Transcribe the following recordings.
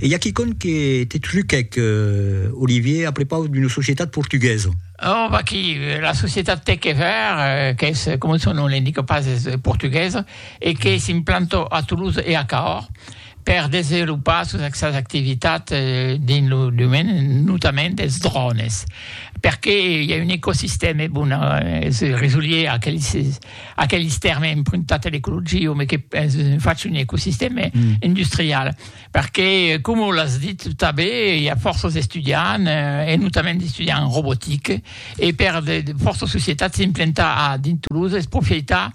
E i a quicòm que te truquèc, Olivier, a prepaus d'una societat portuguesa. Oh, vaquí, la societat Tec e Vèr, qu'es, coma son nom l'indica pas, es portuguesa e que s'implanta a Toulouse e a Cahors per desenvolopar sos sas activitats dins lo domeni notament dels drònes, perqué i a un ecosistèma, bon, es resolier a aqueles. Aquelis tèrmes empruntats a l'ecologia, me que fach un ecosistèma industrial, perqué, coma l'as dit tanben, i a fòrça d'estudiants, e notament d'estudiants en robotica, e per de fòrça societats s'implantar a dins Toulouse es profitar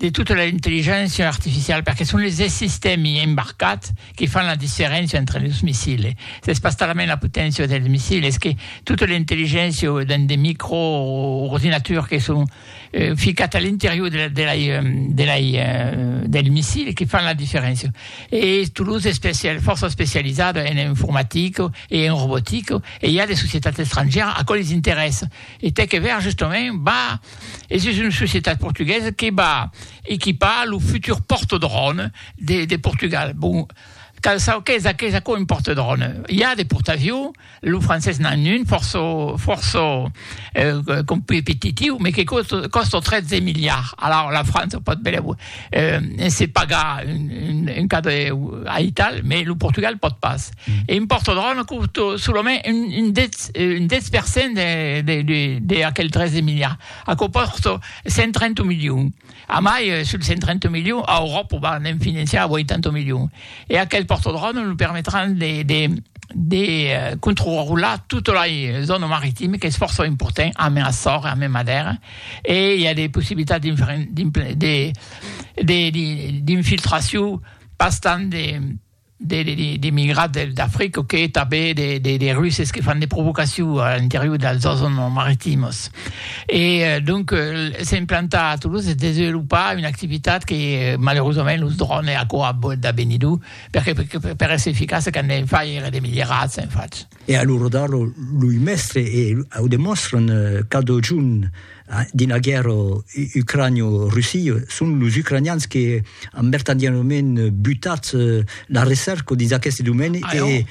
de tota l'intelligéncia artificiala, perqué son es sistèmi embarcats que fan la diferéncia entre los missils. S'es pas talament la poténcia dels missils, es que tota l'intelligéncia dins de micro-ordinaturs que son, euh, ficat a l'interior de la, de la, de la, del missil que fan la diferéncia. E Toulouse es especial, fòrça especializada en informatica e en robotica, e i a de societats estrangièras a quò les interessa. E tè que ver, justament, va, es just una societat portuguesa que va equipar lo futur portadrone de, de Portugal. Bon, cal saber qu'es, qu'es a quò un portadrone. I a de portavions, Lo francés n'en un fòrça fòrça competitiu, me que còsta 13 miliards. Alara la França pòt bèl e se pagar un cadre aital, me lo Portugal pòt pas. E impòrta dròna còsto solament un 10 un 10 per cent de de de aquel 13 miliards. Aquò pòrta 130 milions. Amai, sul 130 milions, a Euròpa va ne'n financiar 80 milions. E aquel pòrtodròme lo permetràn de, de, de controrular tota la zòna maritima, qu'es fòrça important, amé Açor e amé Madèra, e i a de possibilitats d'infiltracion pas tant de, de migrats del d'Africa que tanben de de Russes que fan de provocacion a l'interior dels zòns maritimos e donc se implantar a Toulouse e desenvolupar una activitat que malaurosament los drònes aquò a bòt d'avenir lo perque per èsser eficace qu'an de far èra de milierats en fach. E a lo rodar lo lui mèstre e au demòstran cada jorn dins la guèrra ucranio-russi, son los ucranians que an vertadièrament butat la recèrca dins aqueste domèni e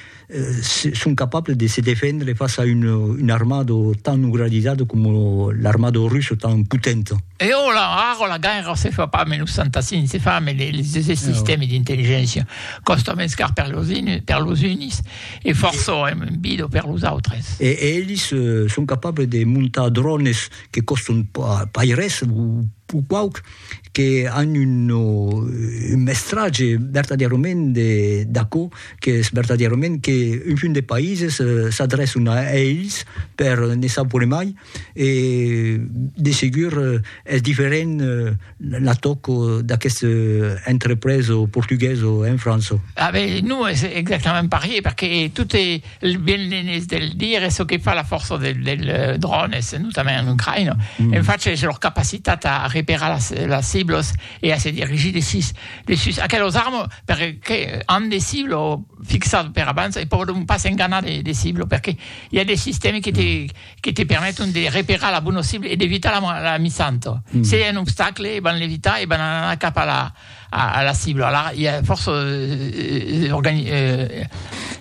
son capables de se defendre fas a una armada tan organizada coma l'armada russa tan potenta. E ora, ara la guèrra se fa pas menus santa si se fa, mai les sistèmes d'intelligéncia còstan mens car per los unis, E fòrça èm un bido per los autres. E elis son capables de montar drònes que còstan pas res o quauque, que an un mestratge vertadièrament d'aquò qu'es vertadièrament qu'un punt de païses s'adrèçan a elis per ne saupre mai, e de segur es diferent l'atoc d'aqueste entrepreso portugueso en França. Ah ben, non es exactament parier, perque tot e ben l'enes de le dire, es çò que fa la fòrça del dròn, es notament en Ucraïna, en fach es lor capacitat a reperar las las ciblos e a se dirigir de sus de sus aquelos armes, perque an de ciblo fixat per abans e pòdon pas enganar de de ciblo, perque i a de sistèmes que te que te permeton de reperar la bona cibla e d'evitar la misanto. Se i a un obstacle, van l'evitar e van anar cap a la cibla. Alara, i a fòrça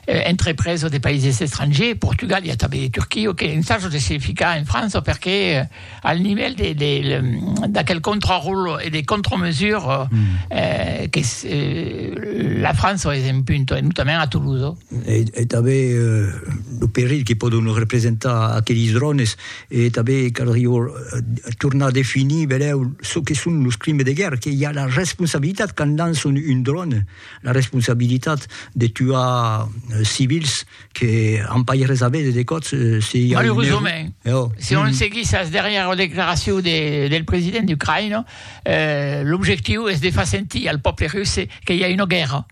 entrepreses de païses estrangers, Portugal, i a tanben de Turquia, que ensajam de se ficar en França perque al nivèl d'aquel contraròtle e de contramesures que la França es en punta, e notament a Toulouse. E tanben lo perilh que pòdon representar aqueles drònes, e tanben caldrió tornar a definir benlèu çò que son los crimes de guèrra, que i a la responsabilitat quand lançon un dròne, la responsabilitat de tuar civils que an pas res a véder de còps se i a un error. Si on seguís as darrièras declaracions del president d'Ucraïna, l'objectiu es de far sentir al pòble russe que i a una guèrra.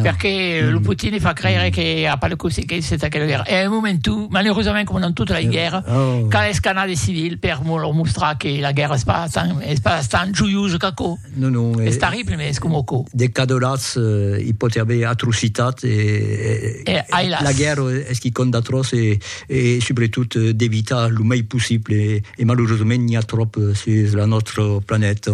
Perque lo Putin i fa creire que a pas de consequéncia entà aquela guèrra. E a un moment tu, malerosament coma dans tota la guèrra, cal escanar de civil per lor mostrar que la guèrra es pas tan, es pas tan joiosa qu'aquò. Non, non. Es tarrible, mès es coma aquò. De cadolats i pòti aver atrocitat e, e ailas. la guèrra es quicòm d'atròç e, e subretot d'evitar lo mei possible e malerosament n'i a tròp sus la nòstra planeta.